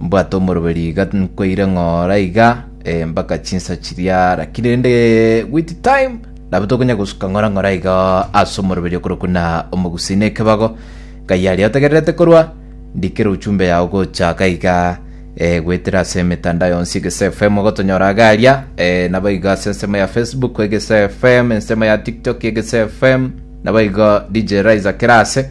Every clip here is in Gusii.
Mbwate omoroberi iga nkoire ng'ora iga eh, mpaka chinsa chiria lakini rende with time nabo tokonya gosuka ng'ora ng'ora iga ase omoroberi okorokwa na omogusii na ekebago ngai aria otegererete korwa ndikere uchumbe yao gochaka iga eh, goetera ase emetandao yonsi egese fm ogotonyora iga aria eh, nabo iga ase ensemo ya facebook egese fm ensemo ya tiktok egese fm nabo iga dj riser kerase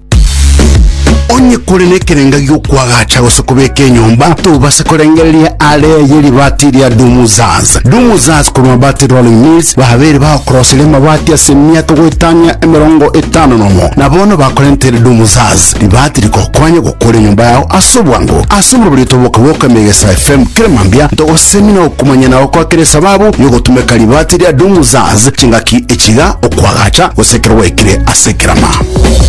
Onye kore nekerenga gi'okwagacha gose kobeka enyomba, tobase korengereria aare ye ribaati ria Dumuzaz. Dumuzaz korwa Mabati Rolling Mills babeire bagokoroseria amabati ase emiaka goetania emerongo etano nomo, na bono bakorentere Dumuzaz ribaati rigokonye gokora enyomba yao ase obwango. Ase oborobori otoboke bw'oka Emegesa FM kera mambia, ntogosemia na gokumanyia na gokoa kera esababu y'ogotumeka ribaati ria Dumuzaz chingaki echiiga, okwagacha gose ekero gwaikire ase ekerama.